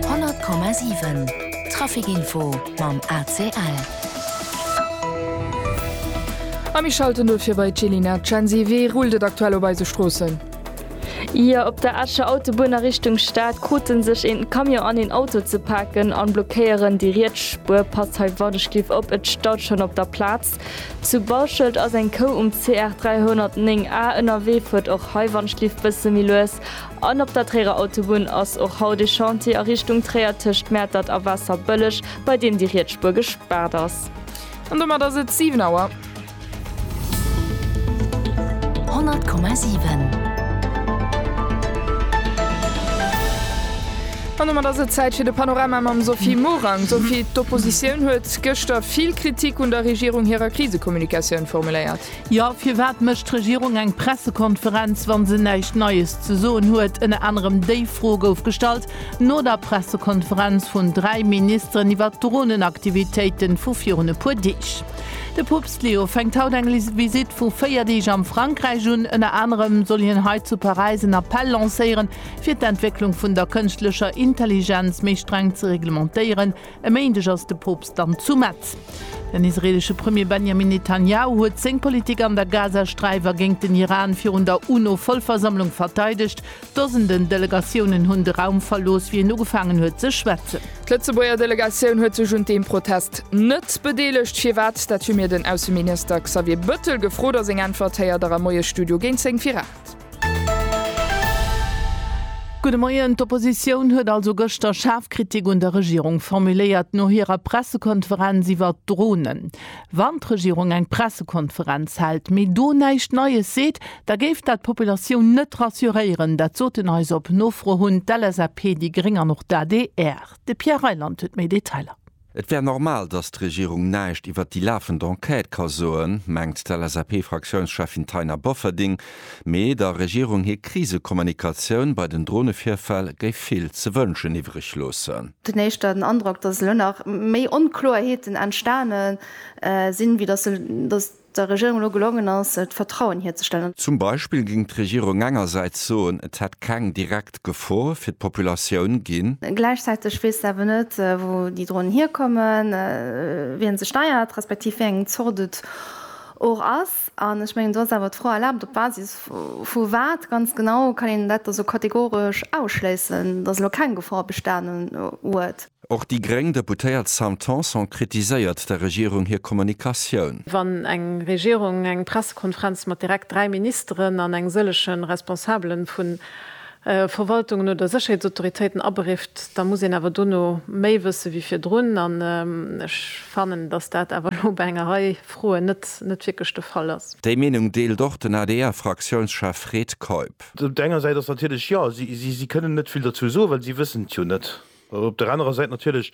100,7 Trafic Info mam ACL. A mir schalten no fir bei d'Jelina Censi. Wéi rullt et aktuell op eise Stroossen? Jo, op der Escher Autobunn a Richtung Stad krute sech een Camion an een Auto ze paken a blockéieren déi riets Spuer. Passt hei Wardeschliff op, et staut schonn op der Plaz. Zu Bauschelt ass eng Kou um CR 309 A ënnerwee, fuert och hei Wandschliff bësse méi lues. An op der Tréierer Autobunn ass och haut ee Chantier a Richtung Tréier tëscht Mäertert a Waasserbëlleg, bei deem déi riets Spuer gespaart ass. An domat ass et 7 Auer. 100,7. An domat ass et Zäit fir de Panorama mam Sophie Morang. Sophie, d'Oppositioun huet gëschter vill Kritik un der Regierung hirer Krisekommunikatioun formuléiert. Jo, firwat mécht d'Regierung eng Pressekonferenz, wa se näischt Neies ze soen huet? Ënner anerem déi Fro gouf gestallt no der Pressekonferenz vun dräi Ministeren iwwer d'Dronen-Aktivitéiten vu virun e puer Deeg. De Poopst Leo fänkt haut eng Visitt vu véier Deeg am Frankräich un. Ënner anerem soll hien hei zu Paräis en Appell lancéieren, fir d'Entwécklung vun der kënschtlecher Intelligenz méi streng ze reglementéieren. E Méindeg ass de Poopst dann zu Metz. Den israeelesche Premier Benjamin Netanjahu huet seng Politik an der Gazasträif a géint den Iran virun der UNO-Vollversammlung verteidegt. Dosenden Delegatiounen hunn de Raum verlooss, wéi en ugefaangen huet ze schwätzen. D'Lëtzebuerger Delegatioun huet sech un deem Protest net bedeelegt. Firwat? Dat hu mir den Ausseminister Xavier Bëttel gefrot a seng Äntwert héiert der am Moiesstudio géint 10 fir 8. Gudde Moien, D'Oppositioun huet also gëschter schaarf Kritik un der Regierung formuléiert no hirer Pressekonferenz iwwert d'Dronen. Wann d'Regierung eng Pressekonferenz hält, mee do näischt Neies seet, da géif dat d'Populatioun net rassuréieren. Dat soten eis op Nofro hunn d'LSAP, déi Gréng an och d'ADR. De Pierre Reyland huet méi Detailer. Et wär normal, datt d'Regierung näischt iwwert déi lafend Enquête ka soen, mengt d'LSAP-Fraktiounscheffin Taina Bofferding. Mee der Regierung hir Krisekommunikatioun bei den Dronevirfäll géif vill ze wënschen iwwreg loossen. Et huet een éischter den Androck, datt elo nach méi Onkloerheeten entstane sinn, wéi datt der Regierung elo gelongen ass, d'Vertrauen hierzestellen. Zum Beispill géing d'Regierung engersäits soen, et hätt keng direkt Gefor fir d'Populatioun ginn. Gläichzäiteg weess se awer net, wou déi Dronen hierkommen, wien se steiert, respektiv wéi eng Zort et och ass. An ech mengen, do ass awer d'Fro erlaabt, op Basis vu wat ganz genau kann een dat da sou kategoresch ausschléissen, datt elo keng Gefor bestanen huet? Och déi gréng Deputéiert Sam Tanson kritiséiert der Regierung hir Kommunikatioun. Wann eng Regierung eng Pressekonferenz mat direkt dräi Ministeren an eng sëllege Responsabele vu Verwaltungen oder Sécherheetsautoritéiten aberifft, da muss een awer dono méi wësse wéi virdrun. An ech fannen, datt dat awer elo bei enger Rei Froen net wierklech de Fall ass. Déi Meenung deelt och den ADR-Fraktiounschef Fred Keup. Op der enger Säit ass natierlech, jo, si kënnen net vill dozou soen, well si wëssen et jo net. Op der anerer Säit natierlech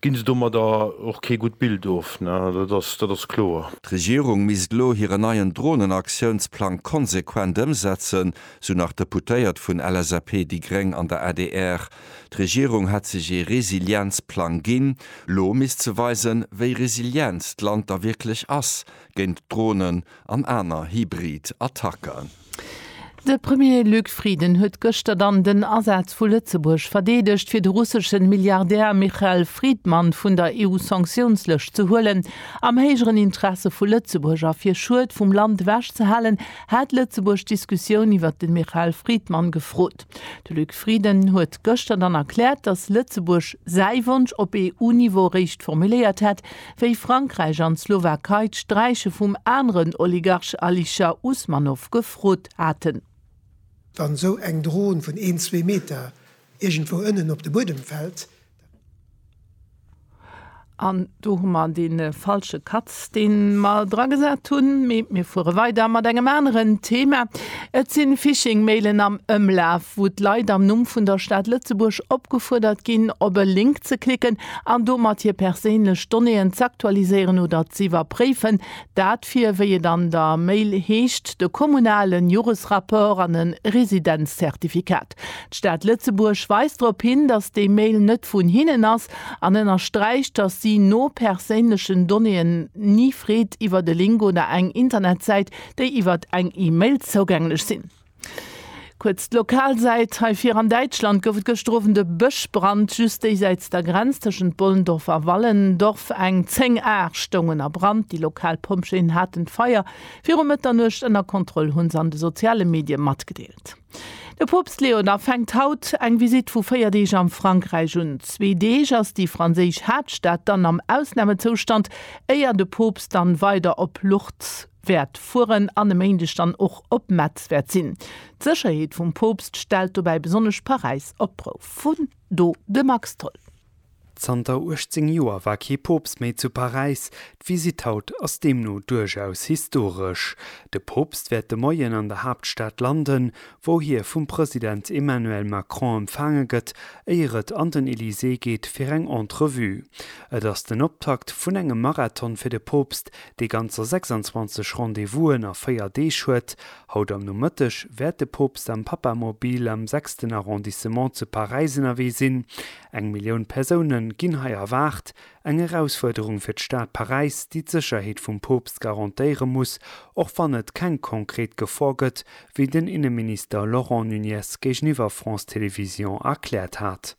gi se domadder och kee gutt Bild of, dat ass kloer. D'Regierung misst elo hiren neien Dronenaktiounsplang konsequent ëmsetzen, sou nach d'Deputéiert vun LSAP, déi gréng an der adr. D'Regierung hätt sech ee Resilienzplang ginn. Lo misst se weisen, wéi resilient d'Land da wierklech ass géint Dronen an aner hybrid Attacken. De Premier Luc Frieden huet gëschter dann den Asaz vu Lëtzebuerg verdeedegt, fir de russesche Milliardär Michael Fridman vun der EU-Sanktiounslëscht ze huelen. Am héijeren Interesse vu Lëtzebuerg a fir Schued vum Land ewech ze halen, hat Lëtzebuerg d'Diskussioun iwwert de Michael Fridman gefrot. De Luc Frieden huet gëschter dann erkläert, datt Lëtzebuerg säi Wonsch op EU-Niveau eréischt formuléiert hätt, wéi Frankräich an d'Slowakei d'Sträiche vum aneren Oligarch Alisher Usmanov gefrot haten. Wann esou eng Dron vun een, zwee Meter iergendwou ënnen op de Buedem fält, An do hu mer dee falsche Cut, dee mer dragesat hunn. Mee mir fuere weider mat engem aneren Thema. Et si Phishing-Mailen am Ëmlaf, wou d'Leit am Numm vun der Stad Lëtzebuerg opgefuerdert ginn, op e Link ze klicken, an domat hir perséinlech Donnéeën z'aktualiséieren oder z'iwwerpréifen, dat fir, wéi et an der Mail heescht, de kommunalen Joresrapport an e Residenzzertifikat. D'Stad Lëtzebuerg weist drop hin, datt déi Mail net vun hinnen ass an ënnersträicht, datt si no perséinlechen Donnéeën ni freet iwwer e Link oder eng Internetsäit, déi iwwer eng E-Mail zougänglech sinn. Kuerz d'lokal Säit, Hei vir an Däitschland gouf et gëschter Owend e Bëschbrand just déisäits der Grenz tëschent Bollendorf a Wallendorf. Eng 10 Aer stoungen a Brand. Déi lokal Pompjeeën haten d'Feier viru Mëtternuecht ënner Kontroll, hu se an de soziale Medie matgedeelt. De Poopst Leo xi fänkt haut eng Visitt vu 4 Deeg am Frankräich un. Zwee Deeg ass déi franséisch Haaptstad dann am Ausnamezoustand, éier de Poopst dann weider op Lourdes wäert fueren an e Méindeg dann och op Metz wäert sinn. D'Sécherheet vum Poopst stellt dobäi besonnesch Paräis op d'Prouf. Vun do de Max Tholl. Zanter 18 Joer war kee Poopst méi zu Paräis. D'Visitt haut ass deemno duerchaus historesch. De Poopst wäert de Moien an der Haaptstad landen, wou hie vum President Emmanuel Macron empfaange gëtt, éier et an den Elysée geet fir eng Entrevue. Et ass den Optakt vun engem Marathon fir de Poopst, dee ganzer 26 Rendez-Vous'en a 4 Deeg huet. Haut am Nomëtteg wäert de Poopst am Papamobil am sechsten Arrondissement zu Paräis ënnerwee sinn. Eng Millioun Persoune ginn hei erwaart. Eng Erausfuerderung fir d'Stad Paräis, déi d'Sécherheet vum Poopst garantéiere muss, och wann et keng konkret Gefor gëtt, wéi den Inneminister Laurent Nunez géigeniwwer France Télévisions erkläert hat.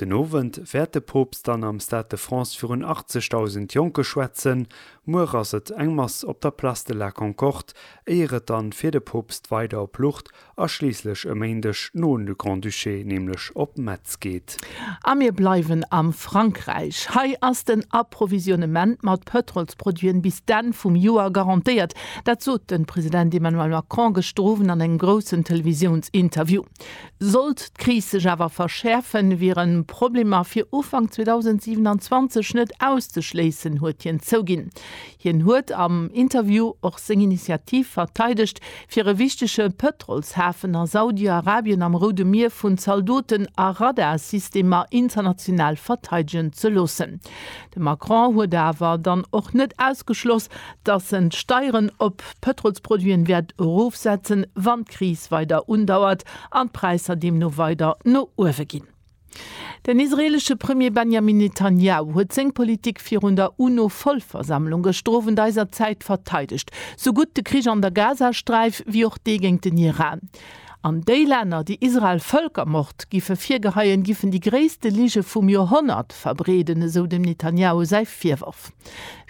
Den Owend wäert de Poopst dann am Stade de France virun 80.000 Jonke schwätzen. Muer ass et eng Mass op der Place de la Concorde, éier et dann fir de Poopst weider op Lourdes a schliisslech e Méindeg no un de Grand-Duché, nämlech op Metz geet. A mir bleiwen am Frankräich. Hei ass den Approvisionnement mat Pëtrolsproduiten bis d'Enn vum Joer garantéiert. Dat sot de President Emmanuel Macron gëschter Owend an engem groussen Televisiounsinterview. Sollt d'Kris sech awer verschäerfen, wieren Problemer fir Ufank 2027 net auszeschléissen, huet hien zouginn. Hien huet am Interview och seng Initiativ verteidegt, fir e wichtege Pëtrolshafen a Saudi-Arabien am Roude Mier vun Zaldoten a Radarsystemer international verteidegen ze loossen. De Macron huet awer dann och net ausgeschloss, dass en d'Steieren op Pëtrolsproduiten wäert erofsetzen, wann d'Kris weider undauert an d'Präisser deemno weider no uewe ginn. Den israeelesche Premier Benjamin Netanjahu huet seng Politik virun der UNO-Vollversammlung gëscht de Owend eiser Zäit verteidegt, sou gutt de Krich an der Gazasträif wéi och dee géint den Iran. An déi Länner, déi Israel Vëlkermord giffe virgeheien, giffen déi gréisste Lige vum Joerhonnert verbreeden, esou dem Netanjahu säi Virworf.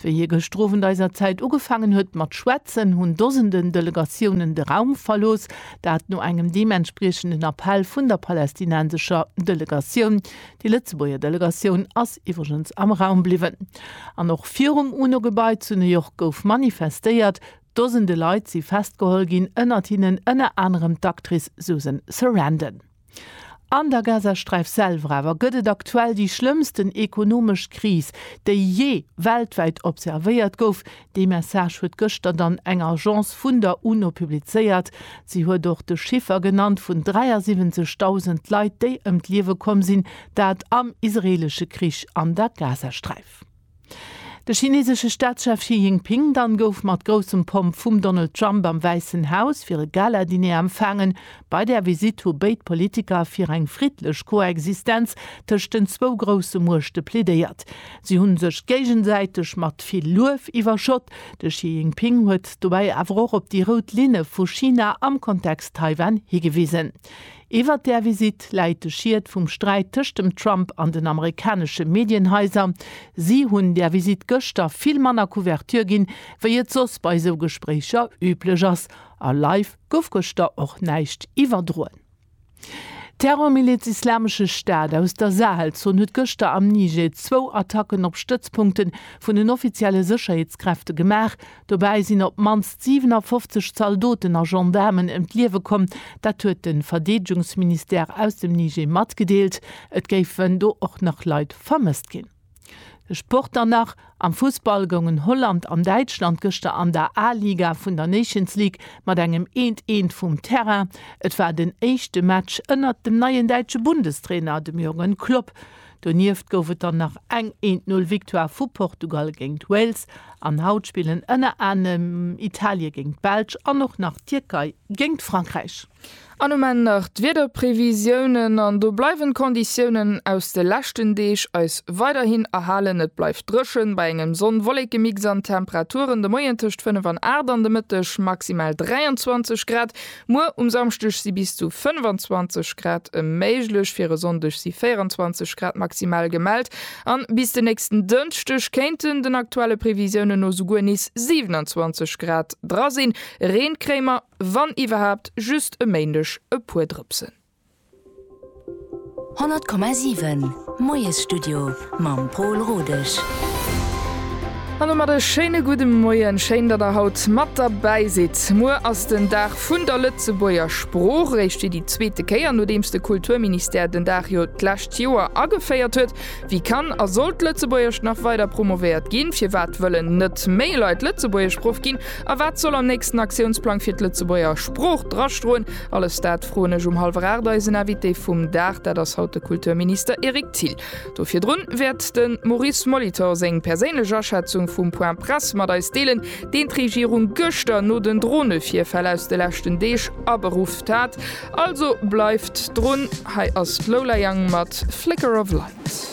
Wéi hie gëschter Owend eiser Zäit ugefaangen huet mat schwätzen, hunn Dosenden Delegatiounen de Raum verlooss, dat no engem deementspriechenden Appell vun der palästinensescher Delegatioun. Déi Lëtzebuerger Delegatioun ass iwwregens am Raum bliwwen. An och virum UNO-Gebai zu New York gouf manifestéiert. Dosende Leit si festgeholl ginn, ënnert hinnen ënner anerem d'Actrice Susan Sarandon. An der Gazasträif selwer awer gëtt et aktuell déi schlëmmsten ekonomesch Kris, déi jee weltwäit observéiert gouf. Dee Message huet gëschter dann eng Agence vun der UNO publizéiert. Si huet och de Chiffer genannt vun 73.000 Leit, déi ëm d'Liewe komm sinn, dat am israeelesche Krich an der Gazasträif. De chinesesche Staatschef Xi Jinping dann gouf mat groussem Pomp vum Donald Trump am Wäissen Haus fir e Gala-Diner empfaangen. Bei där Visitt hu béid Politiker fir eng friddlech Koexistenz tëscht den zwou grousse Muechte plädéiert. Si hu sech géigesäiteg mat vill Luef iwwerschott. De Xi Jinping huet dobäi awer och op déi rout Linne vu China am Kontext Taiwan higewisen. Iwwert där Visitt läit de Schiet vum Sträit tëscht dem Trump an den amerikanesche Medienhaiser. Si hunn där Visitt gëschter vill manner Couverture ginn, wéi et soss bei esou Gespréicher üblech ass. A live gouf gëschter och näischt iwwerdroen. D'Terrormiliz Islamesche Staat aus der Sahelzon huet gëschter am Niger zwou Attacken op Stëtzpunkte vun den offizielle Sécherheetskräfte gemaach, Dobäi sinn op d'mannst 57 Zaldoten a Gendaarmen ëm d'Liewe komm. Dat huet de Verdeedegungsministère aus dem Niger matgedeelt. Et géifen do och nach Leit vermësst ginn. De Sport dann nach, Am Fussball goungen Holland an Däitschland gëschter an der A-Liga vun der Nations League mat engem eent eent vum Terrain. Et war den éischte Match ënnert dem neien däitsche Bundestrainer, dem Jürgen Klopp. Donieft gouf et dann nach eng Eent-Null-Victoire vu Portugal géingt Wales an haut spillen ënner anerem Italie géingt d'Belsch an och nach d'Tierkei géingt Frankräich. An um Enn nach d'Wiederprevisiounen, an do bleiwen d'Konditiounen aus de leschten Deeg eis weiderhin erhalen. Et bleift dréchen, bei engem Sonn-Wollekemix an Temperaturen de Moien tëscht 5 an 8, an de Mëtteg maximal 23 Grad. Muer um Samschdeg si bis zu 25 Grad méiglech, fir e Sonndeg si 24 Grad maximal gemellt an bis de nächsten Dënschdeg kéinten den aktuelle Previsiounen no souguer nees 27 Grad dra sinn. Reen kréie mer, wann iwwerhaapt, just e Méindeg e puer Drëpsen. 100,7 Moiesstudio mam Pol Rodesch. An domat e schéine gudde Moien. Schéin, datt der haut mat derbäi sidd. Muer ass den Dag vun der Lëtzebuerger Sprooch, eréischt fir déi zweete Kéier, nodeems de Kulturministère den Dag jo d'lescht Joer ageféiert huet. Wéi kann a soll d'Lëtzebuergescht nach weider promovéiert ginn? Firwat wëllen net méi Leit Lëtzebuergeschproff ginn? A wat soll am nächsten Aktiounsplang fir d'Lëtzebuerger Sprooch drastroen? Alles dat froen ech um hallwer 8 eisen Invité vum Dag, dat ass haut de Kulturminister Eric Thill. Do virdrun wäert de Maurice Molitor seng perséinlech Aschätzung vum Point Presse mat eis deelen, deen d'Regierung gëschter no den Dronevirfäll aus de leschten Deeg aberufft hat. Also bleift drun, hei ass d'Lola Young mat Flicker of Light.